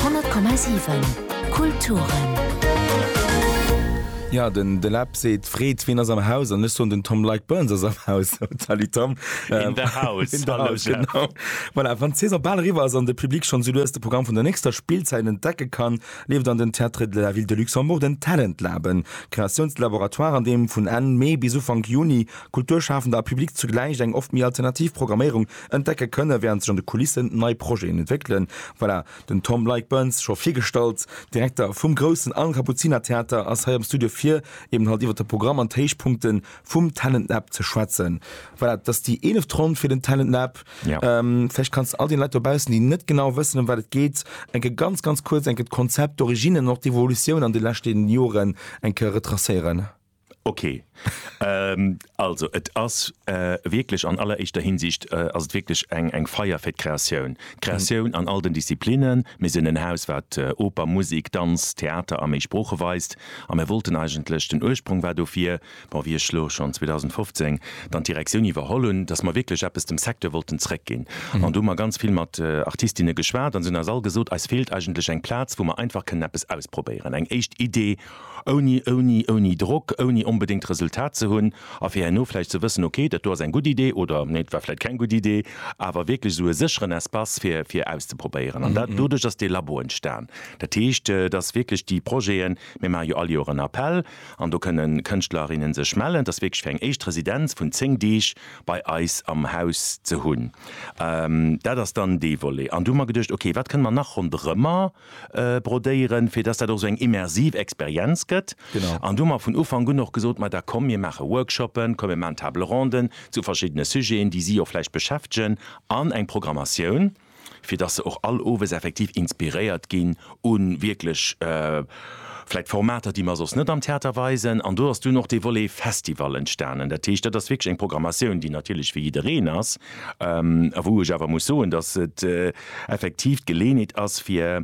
100,7 Kulturen. Jo den de Läb seet Freed, ween ass am Haus? An ech soen den Tom Like Burns ass am Haus. Salut Tom. In the house. In the house genau. Voilà, wann d'Saison bal eriwwer ass an de Public schonn sou lues de Programm vun der nächster Spillzäit entdecke kann, leeft an den Théâtres de la Ville de Luxembourg den Talent Lab, en Kreatiounslaboratoire an deem vun Enn Mee bis Ufank Juni Kulturschafender a Public zugläich eng oft méi alternativ Programméierung Entdecke kënne wärend sech an de Kulissen nei Projeten entwéckelen. Voilà, den Tom Leick-Burns, scho virgestallt, Direkter vum groussen Al Kapuziner Theater ass hei am Studio fir eben halt iwwert de Programm an d'Héichpunkte vum Talent Lab ze schwätzen. Voilà, dat ass déi eeleft Ronn fir den Talent Lab. Vläicht kanns de all den Leit dobaussen, déi net genau wëssen ëm wat et geet, eng Kéier ganz ganz kuerz eng Kéier d'Konzept, d'Originnen an och d'Evolutioun an de leschten Joren eng Kéier retracéieren. Ok. Also et ass wierklech an alleréischter Hinsicht ass et wierklech eng eng Feier fir d'Kreatioun. D'Kreatioun an all den Disziplinnen. Mir sinn en Haus, wat Oper, Musek, Danz, Theater a méi Sprooche weist. A mir wollten eigentlech, den Ursprong war dofir, bon, wéi ech elo schonn 2015 dann d'Direktioun iwwerholl hunn, datt mer wierklech eppes dem Secteur wollten zréckginn. An do hu mer ganz vill mat Artistinne geschwat an se hunn eis all gesot, eis feelt eigentlech eng Plaz, wou mer einfach kënnen eppes ausprobéieren, eng éischt Idee Ouni, ouni, ouni Drock, ouni onbedéngt Resultat ze hunn a fir herno vläicht ze wëssen, ok, dat do ass eng gutt Idee oder nee, et war vläicht keng gutt Idee. Awer wierklech esou e sécheren Espace fir, fir auszeprobéieren. An dat, doduerch ass dee Labo entstan. Dat heescht, et ass wierklech déi Projeten, mir maache jo all Joer en Appell an do kënne Kënschtlerinnen sech mellen, dass wierklech fir eng éischt Residenz vun 10 Deeg bei eis am Haus ze hunn. Dat ass dann dee Volet. An du hu mer geduecht, ok, wat kënne mer nach ronderëmmer brodéieren, fir dass dat och esou eng immersiv Experienz gëtt. Genau. An do hu mer vun Ufank un och gesot, ma da komm mir maache Workshoppen, komm mir maachen Table ronden zu verschiddene Sujeten, déi si och vläicht beschäftegen an eng Programmatioun, fir dass se och all owes effektiv inspiréiert ginn u wierklech vläicht Formater, déi mer soss net am Theater weisen. An do ass dunn och dee Volet Festival entstanen. Dat heescht, dat ass wierklech eng Programmatioun, déi natierlech fir jiddereen ass, A wou ech awer muss soen, datt et effektiv d'Geleeënheet ass fir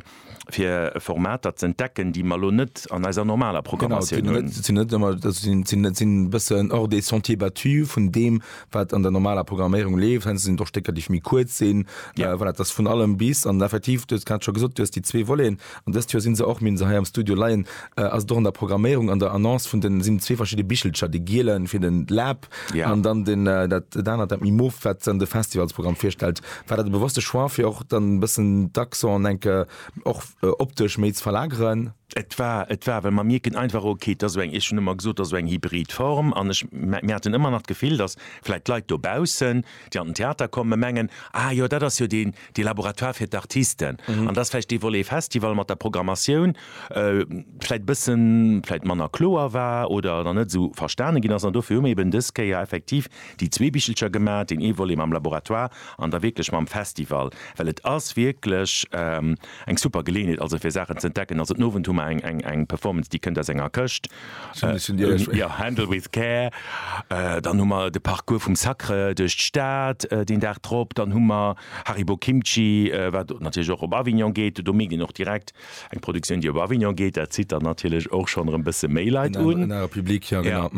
Formater ze entdecken, déi mer elo net an eiser normaler Programmatioun hunn. Genau, sinn net ëmmer, sinn e bëssen hors des sentiers battus vun deem wat an der normaler Programméierung leeft. Heiansdo sinn et och Stécker déi méi kuerz sinn. Voilà, et ass vun allem bis. An effektiv, du hues grad scho gesot, du hues déi zwee Voleten. An dëst Joer sinn se och, mir hunn se hei am Studio leien, ass et och an der Programméierung, an der Annonce vun den, sinn zwee verschidde Bichelcher, dee gielen fir de Lab, Ja. An dann den, äh, dat, dat anert, dat méi Mof, wat dann de Festivalsprogramm virstellt. War dat e bewusste Choix, fir och dann e bëssen d'Accent, enke, och äh, optesch méi ze verlageren? Et war, et war, well mer mierken einfach, okay, et ass esou eng, ech hunn ëmmer gesot, et ass esou eng hybrid Form an ech, mer haten ëmmer nach d'Gefill, dass vläicht d'Leit dobaussen, déi an den Theater kommen, mengen, ah jo, dat ass jo deen, dee Laboratoire fir d'Artisten. An dass vläicht dee Volet Festival mat der Programmatioun vläicht e bëssen, vläicht manner kloer war oder dann net esou verstane ginn ass. An dofir hu mir eben dës Kéier effektiv déi zwee Bichelcher gemaach, deen ee Volet mam Laboratoire an da wierklech mam Festival, well et ass wierklech, Eng super Geleeënheet also fir Saachen ze entdecken. Also den Owend hu mer eng eng eng Performance déi kënnt aus enger Këscht. Zumindest hunn déi eis schwéier. Jo, Handle with care. Dann hu mer de Parcours vum Sacre duerch d'Stad deen Dag drop. Dann hu mer Haribo Kimchi, wat natierlech och op Avignon geet. Do mierkt een och direkt eng Produktioun déi op Avignon geet. Dat zitt dann natierlech och schonn erëm bësse méi Leit un. En anere Public, jo genau.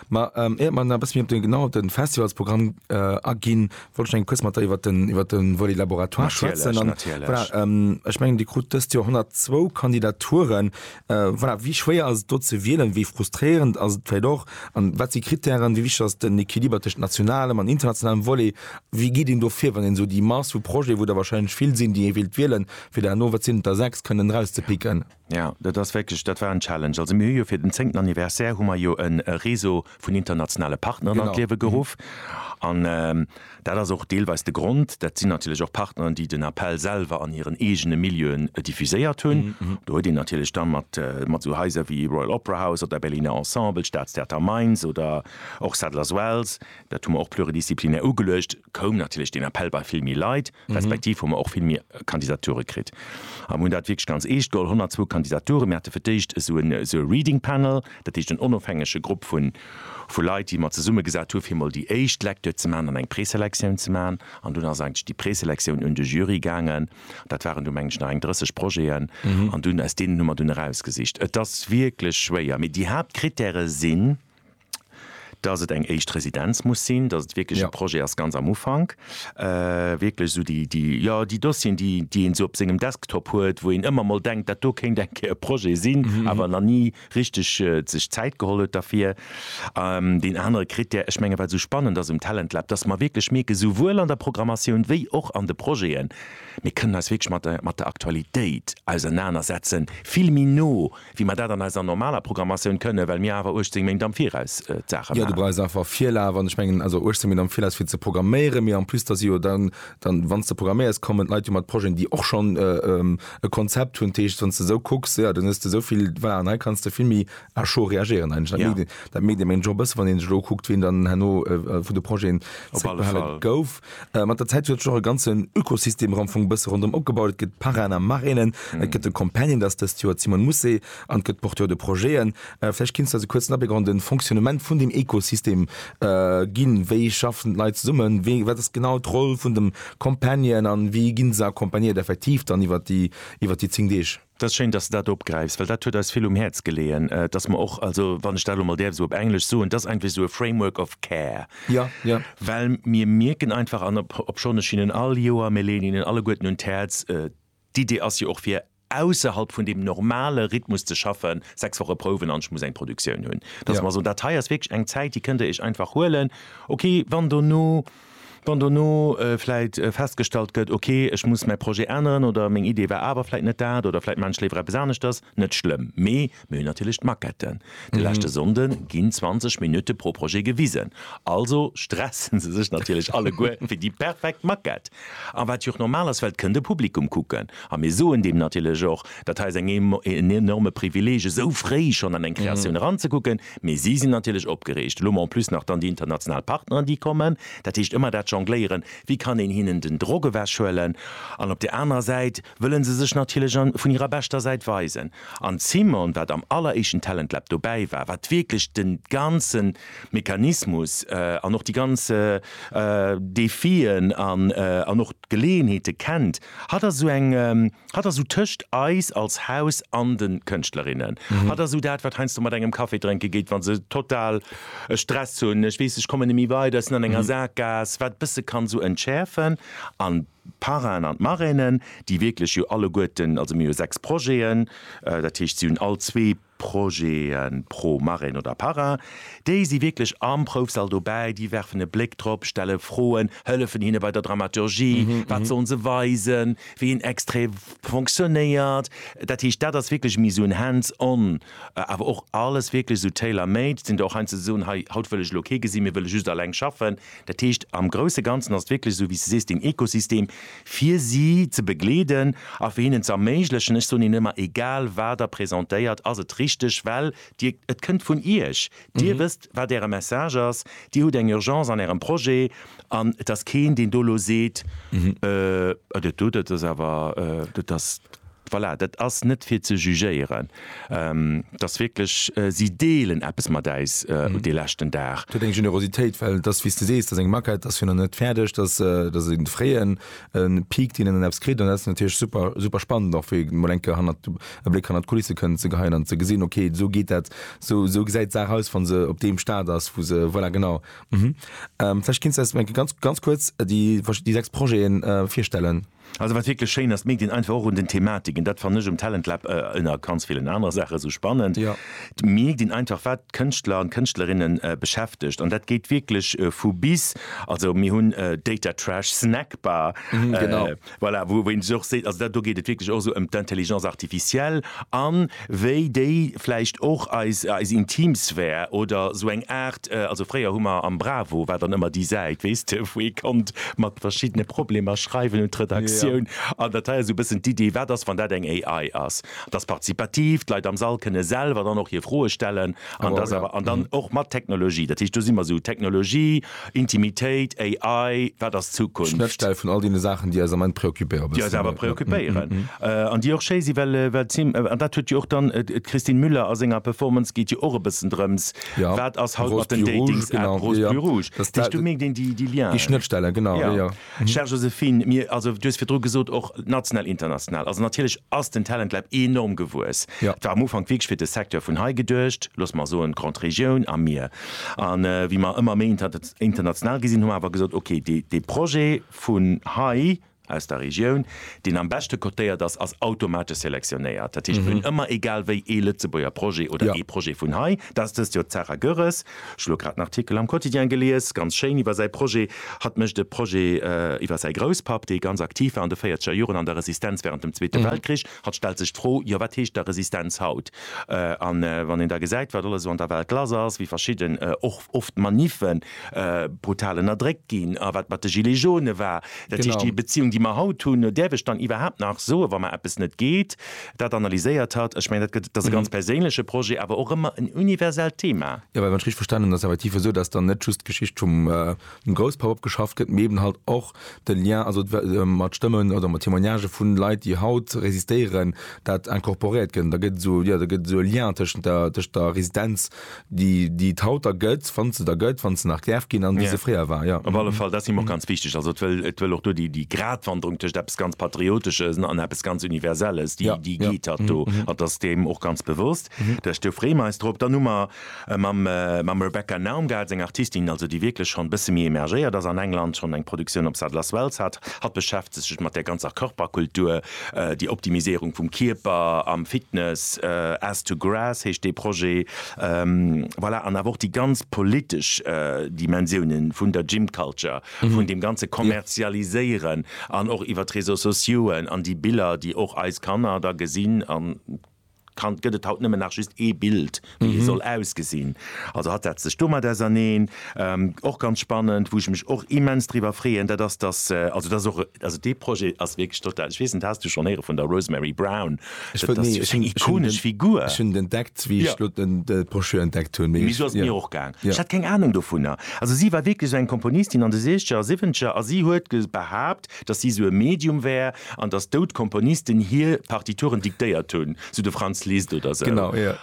Ma éiert mer nach e bësse méi op de genau op de Festivalsprogramm aginn, Wollt ech eng kuerz mat der iwwert den, iwwert den Volet Laboratoire schwätzen. Natierlech, natierlech. Voilà, ähm, ech mengen, Dir krut dëst Joer 102 Kandidaturen. Äh, voilà, wéi schwéier ass et do ze wielen? Wéi frustréierend ass et vläicht och? An wat si Krittären? Wéi wichteg ass den Equiliber tëschent nationalem an internationalem Volet? Wéi geet een do vir, wann een esou déi Mass vu Projete, wou der wahrscheinlech vill sinn, déi ee willt wielen, fir der herno, wat sinn et der, sechs kënnen erauszepicken? Jo, dat ass wierklech, dat war en Challenge. Also mir hu jo fir den zéngten Anniversaire hu mer jo e Réseau vun internationale Partneren an d'Liewe geruff. An dat ass och deelweis de Grond, dat sinn natierlech och Partneren, déi den Appell selwer an hiren eegene Milieuen diffuséiert hunn. Do huet een natierlech da mat esou Haiser wéi Royal Opera House oder Berliner Ensemble, Staatstheater Mainz oder och Sadler's Wells, dat hu mer och pluridisziplinär ugeluecht, koum natierlech den Appell bei vill méi Leit, respektiv hu mer och vill méi Kandidature kritt. A mir hunn dat wierklech ganz eescht geholl, 102 Kandidaturen. Mir hate fir d'éischt esou en esou e Reading Panel, dat heescht en onofhängege Grupp vu vu Leit, déi mer zesummegesat hu fir mol déi éischt Lecture ze maachen an eng Preselektioun ze maachen. An dunn ass eigentlech déi Preselektioun un de Jury gaangen. Dat waren du meng ech nach eng 30 Projeten. An dunn aus deenen hu mer dunn erausgesicht. Et ass wierklech schwéier, mee déi Haaptcritèrë sinn. dass et eng éischt Residenz muss sinn, dass et wierklech e Projet ass ganz am Ufank, wierklech esou déi, jo, déi Dossieren, déi een esou op sengem Desktop huet, wou een ëmmer mol denkt, dat do kéint eng Kéier e Projet sinn, awer nach ni richteg sech Zäit geholl huet derfir. Deen anere Krittär, ech menge wat esou spannend ass um Talent Lab, dass mer wierklech mierken, souwuel an der Programmatioun wéi och an de Projeten, mir kënnen eis wierklech mat der Aktualitéit ausernanersetzen, vill méi no Wéi mer dat an eiser normaler Programmatioun kënnen, well mir awer 18 Méint am Viraus d'Saache maachen. Jo, du brauchs einfach Virlaf an ech mengen also 18 Méint am Viraus fir ze programméieren, mee en plus da si jo dann, dann wann s de programméiers, kommen d'Leit jo mat Projeten, déi och schonn e Konzept hunn. Dat heescht, wann s de esou kucks, jo, dann hues de esou vill, voilà, an hei kanns de vill méi à chaud reagéieren eigentlech. Dat mierkt ee menge jo e bësse wann ee sech elo ukuckt, wien dann herno vun de Projeten zréckbehale gouf. Mat der Zäit huet sech och e ganzen Ökosystem am Fong bësse ronderëm opgebaut. Et gëtt d'Parrain am Marrainen, et gëtt de Companion, dat ass dëst Joer d'Simone Mousset, an et gëtt d'Porteurs de projeten. Vläicht kéints de eis e kuerzen Abléck och an de Fonctionnement vun deem Ökosystem ginn. Wéi schaffen d'Leit zesummen? Wéi, wat ass genau d'Roll vun dem Companion an wéi gi se accompagnéiert effektiv dann iwwert déi, iwwert déi zéng Deeg? Dat ass schéin, dass de dat opgräifs, well dat huet eis vill um Häerz geleeën, dass mer och, also wann ech dat elo mol däerf esou op Englesch soen, dass eng wéi esou e Framework of care, well mir mierken einfach, an obschonn ech hinnen all Joer, mir leeën hinnen alleguerten un d'Häerz, d'Idee ass jo och fir ausserhalb vun deem normale Rhythmus ze schaffen, sechs Woche prouwen an ech muss eng Produktioun hunn, dass mer soen, dat hei ass wierklech eng Zäit, déi kënnt Dir Iech einfach huelen, okay, wann dono. Wann dono vläit festgestallt gëtt, ok, ech muss mäi Projet änneren oder meng Idee war awer vläit net dat oder vläit maachen ech léiwer eppes aneschters, net schlëmm, mee mir hunn natierlech d'Maquetten. De leschte Sonnde ginn 20 Minutte pro Projet gewisen, also stresse se sech natierlech alleguer fir déi perfekt Maquette. A wat jo och normal ass, well et kënnt e Publikum kucken. A mir soen deem natierlech och, dat hei ass en enorme Privileeg, esou fréi schonn an eng Kreatioun eranzekucken, Mee si sinn natierlech opgereegt. Elo en plus nach dann déi international Partneren, déi kommen. Dat heescht ëmmer dat Jongléieren, Wéi kann een hinnen den Drock ewechhuelen? An op der anerer Säit wëlle se sech natierlech vun hirer beschter Säit weisen. An d'Simone, wat am alleréischten Talent Lab dobäi war, wat wierklech de ganze Mechanismus an och déi ganz Defien an och d'Geleeënheete kennt, Hatt ass esou eng, hatt ass esou tëscht eis als Haus an de Kënschtlerinnen. Hatt ass esou dat, wat heiansdo mat engem Café drénke geet, wa se total e Stress hunn, ech weess, ech kommen net méi weider, ech sinn an enger Sakgaass, wat e bësse kann esou entschäerfen. An d'Parrainen an d'Marrainen, déi wierklech jo alleguerten, also mir hu sechs Projeten, dat heescht, si hunn all zwee Projeten pro Marin oder Parrain, déi si wierklech am Proufsall dobäi, déi werfen e Bléck drop, stelle Froen, hëllefen hinne bei der Dramaturgie, wat sollen se weisen, wéi en Extrait fonctionnéiert. Dat heescht, dat ass wierklech méi esou en hands on, awer och alles wierklech esou tailor-made, sinn der och heiansdo, déi soen, hei haut wëll ech elo kee gesinn, mir wëlle just eleng schaffen. Dat heescht, am grousse Ganzen ass et wierklech esou, wéi s de sees, den Ekosystem fir si ze begleeden a fir hinnen ze erméiglechen, ech soen Iech ëmmer, egal wat Der presentéiert, ass et richteg, well Dir, et kënnt vun Iech, Dir wësst, wat Äre Message ass, Dir hutt eng Urgence an Ärem Projet an et ass keen, deen do elo seet, Ëh, dat do, dat ass awer, dat ass. Voilà, dat ass net fir ze jugéieren, et ass wierklech, si deelen eppes mat äis dee leschten Dag. Et huet eng Generositéit, well et ass, wéi s de sees, et ass eng Maquette, et ass jo nach net fäerdeg, et ass e fréie Peak, deen een dann eppes kritt an dat ass natierlech super, super spannend och fir mol eng Kéier hannert, e Bléck hannert d'Kulisse kënnen ze geheien an ze gesinn, okay, esou geet dat, esou gesäit d'Saach aus, wa se op deem Stade ass, wou se, voilà, genau. Vläicht kéints de eis eng Kéier ganz, ganz kuerz déi sechs Projeten virstellen. Also wat wierklech schéin ass, d'Medien einfach och un den Thematiken, dat fannen ech um Talent Lab ënner ganz villen anere Saache sou spannend, d'Medien einfach, wat d'Kënschtler an d'Kënschtlerinne beschäftegt an dat geet wierklech vu bis. Also mir hunn Data Trash, Snackbar, voilà, wou een sech och seet, also dat do geet et wierklech och esou ëm d'Intelligence artificielle an, wéi déi vläicht och eis eis intim Sphär oder esou eng Aart, also fréier hu mer am Bravo war dann ëmmer déi Säit, weess de, wou ee konnt mat verschiddene Problemer schreiwen un d'Redaktioun an dat hei ass esou e bëssen d'Idee, wat ass, wann dat eng AI ass? D'ass partizipativ, d'Leit am Sall kënne selwer dann och hir Froe stellen an d'ass awer an dann och mat Technologie, dat heescht do si mer esou Technologie, Intimitéit, AI, wat ass d'Zukunft? Schnëttstell vun all deene Saachen, déi eis am Ament preoccupéieren. Déi eis awer preoccupéieren an déi och schéi sinn, well et sinn, an dat huet jo och dann d'Christine Müller a senger Performance, geet jo och e bëssen drëms, wat ass haut mat den Datings-Appen, Rose plus rouge, dat heescht, do mierkt een déi Liens. Déi Schnëttstellen, genau, jo, jo. Chère Joséphine, mir, also du hues virdru gesot, och national, international, also natierlech ass den Talent Lab enorm gewuess. Et war am Ufank wierklech fir de Secteur vun hei geduecht, looss mer soen d'Grande Région a mir. A wéi mer ëmmer méi international gi sinn, hu mer awer gesot, ok, dee Projet vun hei aus der Regioun, deen am beschte cotéiert ass, ass automatesch selektionéiert. Dat heescht, mir hunn ëmmer egal wéi ee Lëtzebuerger Projet oder ee Projet vun hei, dat ass dëst Joer d'Sarah Goerres, Ech hu lo grad en Artikel am Quotidien gelies, ganz schéin, iwwer säi Projet. Hatt mécht e Projet iwwer säi Grousspapp, dee ganz aktiv war an de véierzeger Joren an der Resistenz wärend dem Zweete Weltkrich. Hatt stellt sech d'Fro, jo, wat heescht da Resistenz haut? A wann een da gesäit, wat alles esou an der Welt lass ass, wéi verschidden och oft Manife brutal ënnerdréckt ginn a wat mat de Gilets jaunes war, dat heescht, déi Beziung, déi mer haut hunn, no där ech dann iwwerhaapt nach soen, wa mer eppes net geet, dat analyséiert hat. Ech mengen, dat ass e ganz perséinleche Projet, awer och ëmmer en universellt Thema. Jo, well wann ech richteg verstanen hunn, ass et effektiv esou, datt dann net just d'Geschicht vum Grousspapp opgeschafft gëtt, mee eben halt och de Lien, also mat Stëmmen oder mat Témoignagen vu Leit, déi haut resistéieren, dat incorporéiert gëtt. Da gëtt et esou, jo, da gëtt et esou e Lien tëschent der Residenz déi déi et haut der gëtt, wann se der gëtt, wann se nach däerf ginn an wéi se fréier war, jo. Op alle Fall, dat si mer och ganz wichteg. Also et wëll et wëll och do déi déi Gratwanderung tëscht eppes ganz Patrioteschen an eppes ganz Universelles, déi déi geet hatt do. Hatt ass deem och ganz bewosst. Dat heescht, do freeë mer eis drop. Dann hu mer mam mam Rebecca Naum gehat, seng Artistin also, déi wierklech schonn e bësse méi emergéiert ass an England, schonn eng Produktioun op Sadler's Wells hat. Hatt beschäftegt sech mat där ganzer Körperkultur, Déi Optimiséierung vum Kierper am Fitness, As to Grass heescht dee Projet, voilà. An awer och déi ganz politesch Dimensiounen vun der Gym Culture, vun deem ganze Kommerzialiséieren an och iwwer d'Réseaux sociauxen an déi Biller, déi och eis Kanner da gesinn an, Kand gëtt et haut nëmmen nach just ee Bild wéi ee soll ausgesinn. Also hatt setzt sech domat auserneen, och ganz spannend, wou ech mech och immens driwwer freeën, dat ass dass, also dass och, also dee Projet ass wierklech total, ech weess net has du schonn héiere vun der Rosemary Brown? Dat ass jo eng ikonesch Figur. Ech hunn et entdeckt wéi ech elo d'Broschür entdeckt hunn. Mee esou ass et mir och gaang, ech hat keng Anung dovunner. Also si war wierklech eng Komponistin an de Siechzeger a Siwwenzeger a si huet behaapt, datt si sou e Medium wär an datt dout Komponisten hir Partituren diktéiert hunn, sou de Franz Liszt oder sou. Genau, jo.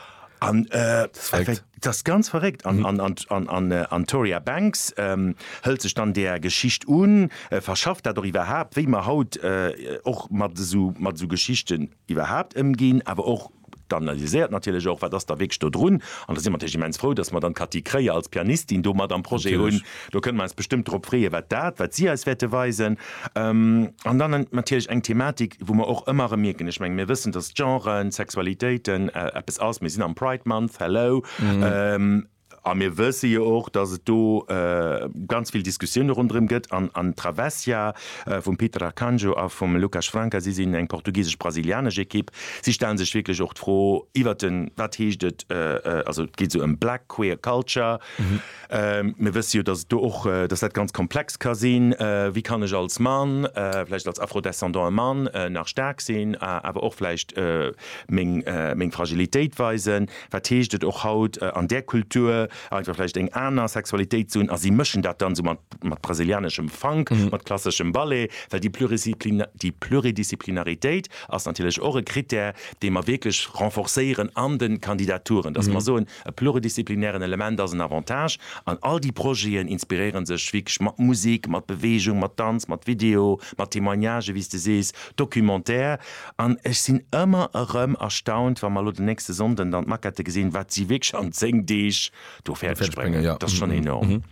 An dat ass ganz verréckt. An d'Toria Banks hëlt sech dann där Geschicht un, verschafft dat och iwwerhaapt, wéi mer haut och mat esou Geschichten iwwerhaapt ëmginn, awer och, D'analyséiert natierlech och, wat ass da wierklech do drun. An da si mer natierlech immens frou, dass mer dann d'Cathy Kreie als Pianistin do mat am Projet hunn. Do kënne mer eis bestëmmt drop freeë wat dat, wat si eis wäerte weisen. An dann natierlech eng Thematik, wou mer och ëmmer erëm mierken, ech mengen, mir wëssen, dass Genren, Sexualitéiten eppes ass, mir sinn am Pride Month, hello. A mir wësse jo och, dass et do ganz vill Diskussioune ronderëm gëtt. An d'Travesia vum Peter Arcanjo a vum Lucas Franca, si sinn eng portugisesch-brasilianesch Ekipp, si stellen sech wierklech och d'Fro iwwer den, wat heescht et, also et geet esou ëm Black Queer Culture. Mir wësse jo, dass et do och, dass dat ganz komplex ka sinn, wéi kann ech als Mann, vläicht als Afro-Descendant e Mann, nach staark sinn, awer och vläicht meng Fragilitéit weisen. Wat heescht et och haut an där Kultur einfach vläicht eng aner Sexualitéit ze hunn a si mëschen dat dann esou mat mat brasilianeschem Funk, mat klasseschem Ballet, well déi Plurisidipli déi Pluridisziplinaritéit ass natierlech och e Krittär, dee mer wierklech renforcéieren an de Kandidaturen, dass mer soen, e pluridisziplinären Element ass en Avantage an all déi Projeten inspiréiere sech wierklech mat Musik, mat Beweegung, mat Danz, mat Video, mat Témoignagen, wéi s de sees, Documentaire. An ech sinn ëmmer erëm erstaunt, wa mer elo den nächste Sonnden dann d'Maquette gesinn, wat si wierklech an zéng Deeg do fäerdeg bréngen. Dat ass schonn enorm.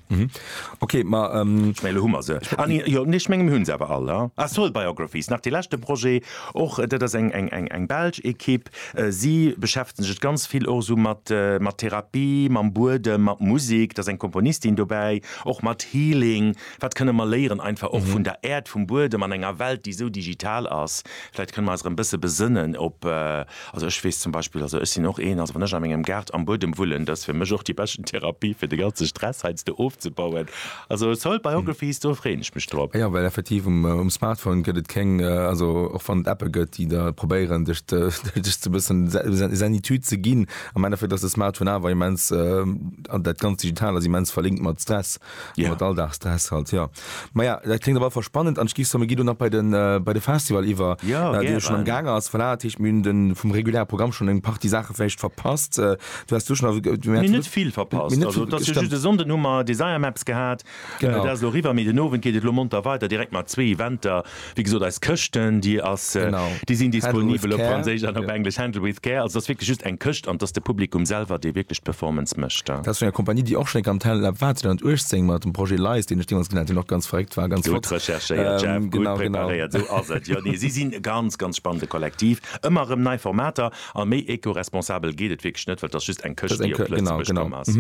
Ok, ma ech mengen elo hu mer se. Ah nee, jo, nee, ech mengen mir hunn se awer all. Ah, Soul Biographies, nach dee leschte Projet, och dat ass eng belsch Ekipp. Si beschäftegen sech ganz vill och esou mat Therapie, mam Buedem, mat Musek. Da ass eng Komponistin dobäi, och mat Healing, Wat kënne mer léieren einfach och vun der Äerd, vum Buedem an enger Welt, déi esou digital ass? Vläicht kënne mer eis erëm e bësse besënnen op, also ech weess zum Beispill, also ech sinn och een, also wann ech a mengem Gaart am Buedem wullen, dat ass fir mech och déi beschten Therapie fir de ganze Stress heiansdo ofzebauen. Also Soil Biographies, do freeën ech mech drop. Jo, well effektiv um Smartphone gëtt et keng, also och wann et Appe gëtt, déi der probéieren dech ze e bëssen Zenitud ze ginn, am Endeffekt ass de Smartphone awer immens, dat ganz Digitale ass immens verlinkt mat Stress. Yeah. Mat Alldagsstress halt, jo. Maja, dat kléngt op alle Fall spannend an ech géif soen, mir ginn do nach bei den, bei de Festival iwwer, jo, deen jo schonn am gaange ass. Voilà, dat heescht, mir hunn de vum reguläre Programm schonn eng Partie Saache vläicht verpasst. Du häss du schonn awer ge, mir hätt. Mir net vill verpasst. Also et ass jo just e Sonnden hu mer Desire Maps gehat, dat ass elo eriwwer, mee den Owend geet et elo monter weider direkt mat zwee Eventer. Wéi gesot, eis Këschten, déi ass, déi sinn disponibel op Franséisch an op Englesch, Handle With Care. Also et ass wierklech just eng Këscht an et ass de Publikum selwer, dee wierklech d'Performance mécht. Dat ass vun enger Kompanie, déi och schonn eng Kéier am Talent Lab war, 2018 mat dem Projet Lies, deen ech deemools gesinn hat, deen och ganz verréckt war, ganz flott. Gutt recherchéiert, Jeff, gutt preparéiert, esou ass et. Jo, nee, si sinn e ganz, ganz spannende Kollektiv. Ëmmer erëm nei Formater a méi eco-responsabel geet et wierklech net, well et ass just eng Këscht, déi op Lëtzebuerg komm ass.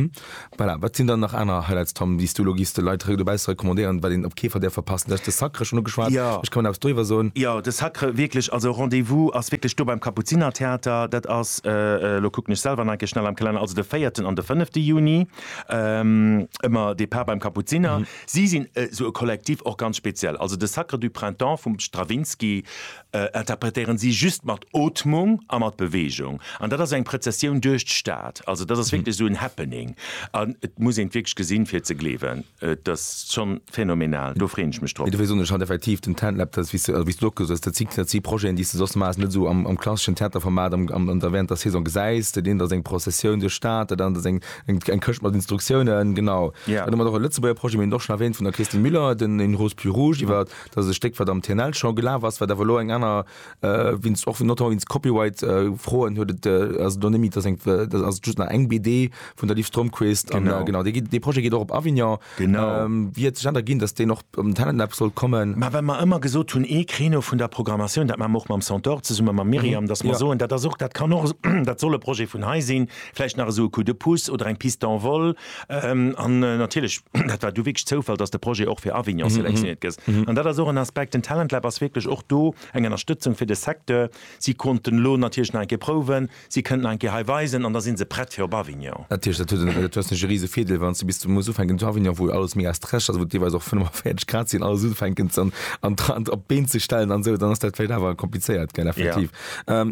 Voilà, wat sinn dann nach aner Highlights, Tom, déi's du elo giffs de Leit de Bässe recommandéieren, wat een op kee Fall däerf verpassen? Du haas de Sacre schonn ugeschwat, Jo. vläicht kann een eppes doriwwer soen. Jo, de Sacre, wierklech, also Rendez-vous ass wierklech do beim Kapuzinertheater. Dat ass, elo kucken ech selwer nach eng Kéier schnell am Kalenner, also de véierten an de fënnefte Juni, ëmmer Depart beim Kapuziner. Si sinn esou e Kollektiv, och ganz speziell, also de Sacre du Printemps vum Stravinsky, interpretéieren si just mat Ootmung a mat Beweegung an dat ass eng Prëzessioun duerch d'Stad. Also dat ass wierklech esou en Happening an et muss een et wierklech gesinn fir et ze gleewen. Et ass schonn phänomenal, do freeën ech mech drop. Dofir soen ech haut effektiv den Tent-Lab, dat ass wéi s du och gesot hues, dat si dat si Projeten déi s de soss maass net esou am klasseschen Theaterformat am am der während der Saison gesäis. Dat eent ass eng Prozessioun duerch d'Stad, dat anert ass eng eng Këscht mat Instruktiounen, genau. Dann hu mer nach e Lëtzebuerger Projet, mir hunn et och schonn erwähnt vun der Christine Müller, den Une rose plus rouge iwwer Dat ass e Stéck, wat am TNL scho gelaf ass, wat awer elo eng aner, wéinst och notamment wéinst Copyright-Froen huet et, ass et elo net méi, et ass eng, dat ass just nach eng BD vun der Liv Stromquist. An genau, dee geet, dee Projet geet och op Avignon. Wéi huet sech dat erginn, datt deen och am Talent Lab sollt kommen? Mä well mer ëmmer gesot hunn, ee Créneau vun der Programmatioun, dat maache mer och mam Centaure zesumme mam Myriam, datt mer soen, dat ass och, dat kann och, dat soll e Projet vun hei sinn, vläicht nach esou e Coup de pouce oder eng Piste en vol, An natierlech, dat war du wierklech Zoufall, dass de Projet och fir Avignon selektionéiert gëss. An dat ass och en Aspekt, den Talent Lab ass wierklech och do eng Ënnerstëtzung fir de Secteur. Si konnten elo natierlech nach eng Kéier prouwen, si kënnen nach eng Kéier hei weisen an da si se prett fir op Avignon. Natierlech, dat huet en, du hues natierlech e rise Virdeel, wann s de bis du muss ufänken zu Avignon, wou alles mega stresseg ass, wou et deelweis och 45 Grad sinn, alles ufänken ze an op d'Been ze stellen an esou, dann ass dat vläicht awer komplizéiert, gell, effektiv.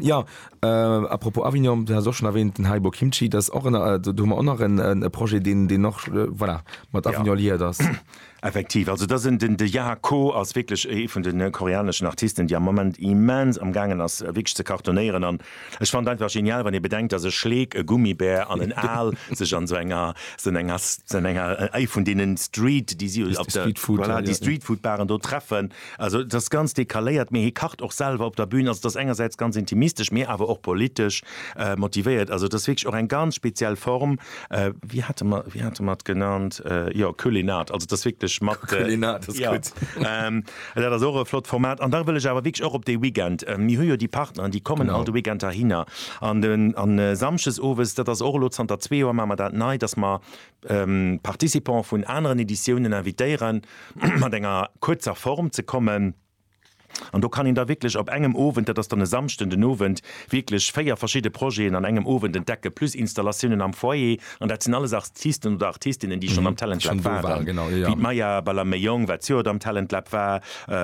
Jo. A propos Avignon, du haas och schon erwähnt den Haibo Kimchi, dat ass och en, do hu mer och nach en Projet, deen, deen och, voilà, mat Avignon liiert ass. Effektiv, also dat sinn, den, de Yah Ko ass wierklech ee vun de koreaneschen Artisten, déi am Moment immens am gaangen ass wierklech ze cartonéieren an ech fannen et einfach genial, wann ee bedenkt, dass e Schleek, e Gummibär an en Aal sech an esou enger, esou enger, esou enger, ee vun deenen Street, déi si op der, voilà, déi Streetfood-Baren do treffen Also et ass ganz decaléiert, mee hie kacht och selwer op der Bühn. Also et ass engersäits ganz intimistesch, mee awer och politesch motivéiert. Also et ass wierklech och eng ganz speziell Form. Wéi hate mer, wéi hate mer et genannt, jo, Culinart. Also et ass wierklech mat, Culinart ass gutt. Dat ass och e flott Format. An da wëll ech awer wierklech och op dee Weekend, mir hu jo déi Partneren, déi kommen all de Weekend heihinner. An Samschdes owes, dat ass och elo zanter zwee Joer, maache mer dat nei, dass mer Participants vun aneren Editiounen invitéieren, mat enger kuerzer Form ze kommen. An do kann een da wierklech op engem Owend, dat ass dann e Samschden den Owend, wierklech véier verschidde Projeten an engem Owend entdecken, plus Installatiounen am Foyer. An dat sinn alles Artisten oder Artistinnen, déi schonn am Talent Lab waren, wéi d'Maya Balaméyong, wat d'Joert am Talent Lab war,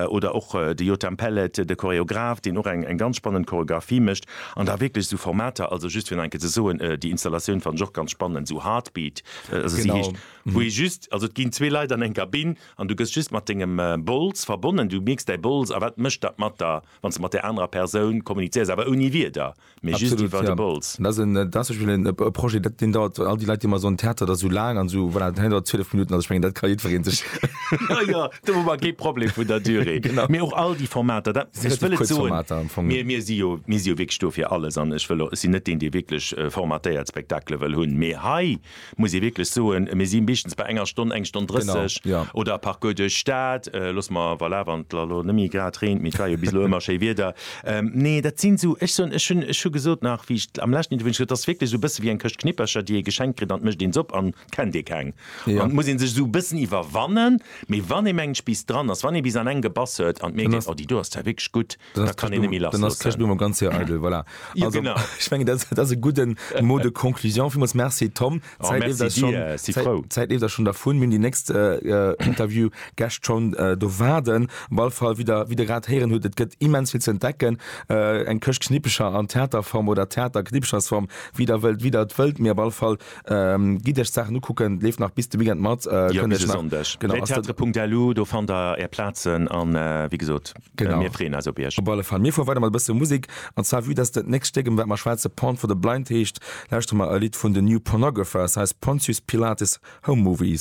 oder och de Yotam Pellet, de Choreograph, deen och eng ganz spannend Choreographie mécht. An da wierklech esou Formater, also just fir nach eng Kéier ze soen, déi Installatioun fannen ech och ganz spannend, esou Heartbeat, also si heescht, wou ee just, also et ginn zwee Leit an eng Kabinn an du gëss just mat dengem Bols verbonnen, du mierks däi Bols a wat mécht dat mat der, wann s de mat där anerer Persoun kommunizéiers, awer ouni Wierder, mee just iwwer de Bols. Absolut, ja. Dat ass zum Beispill e Projet, dat, deen dauert, all déi Leit, déi ëmmer soen, Theater, dat ass esou laang an esou, voilà, hei dauert 12 Minutten, also ech mengen, dat ka jiddweree sech. Jo, jo, Do hu mer kee Problem vun der Durée. Genau. Mee och all déi Formater, dat, ech Relativ wëll et kuerz soen, Formater am Fong. mir, mir si jo, mir si jo wierklech do fir alles an ech wëll och, ech sinn net deen, dee wierklech formatéiert Spektakele wëll hunn. Mee hei muss ee wierklech soen, mir si meeschtens bei enger Stonn, eng Stonn Genau, drësseg ja. oder e Parcours duerch d'Stad, loosse mer, voilà, wann et elo net méi grad reent, mee et war jo bis elo ëmmer schéi Wieder. Nee, dat sinn esou, ech soen, ech hunn, ech hu gesot nach, wéi ech am leschten Interview, ech gesot, dat ass wierklech esou e bësse wéi eng Këscht Knippercher, déi ee geschenkt kritt an et mécht een se op an kennt ee keng. Ja. An muss een sech esou e bëssen iwwerwannen, mee wann ee mengt bis dran ass, wann ee bis an eng gebass huet an d'Mierkt Dann ass- geet, oh déi do ass zwar wierklech gutt, Dann da ass kann een net méi Dann ass Kirschblum lassloossen. am ganz Joer eidel, voilà. Jo, Also, genau. ech menge dat ass- dat ass e gudden Mot de conclusion. Villmools Merci Tom. Oh, Zäit merci leeft eis schonn- dir, si Zäit- frou. Zäit leeft eis schonn dervun. Mir hunn déi nächst äh, äh, Interview-Gäscht schonn äh, do waarden. Op all Fall, wéi der, wéi der grad héieren hutt, et gëtt immens vill ze entdecken. Äh, eng Këscht Knippecher an Theaterform oder Theater Knippechersform, wéi der wëllt, wéi der et wëllt, mee op all Fall Ähm, gitt Iech d'Saachen ukucken, leeft nach bis de Weekend mat. Äh, jo, bis e Sonndeg. Welttheater.lu, do fannt der Är Plazen an äh, wéi gesot, genau. mir freeën eis op Iech. Op alle Fall, mir fuere weider mat e bësse Musek. An zwar, vue dass dat nächst Stéck, iwwer wat mer schwätzen, Porn for the Blind heescht, lauschteren mer e Lidd vun The New Pornographers, hei ass Pontius Pilatus Home Movies.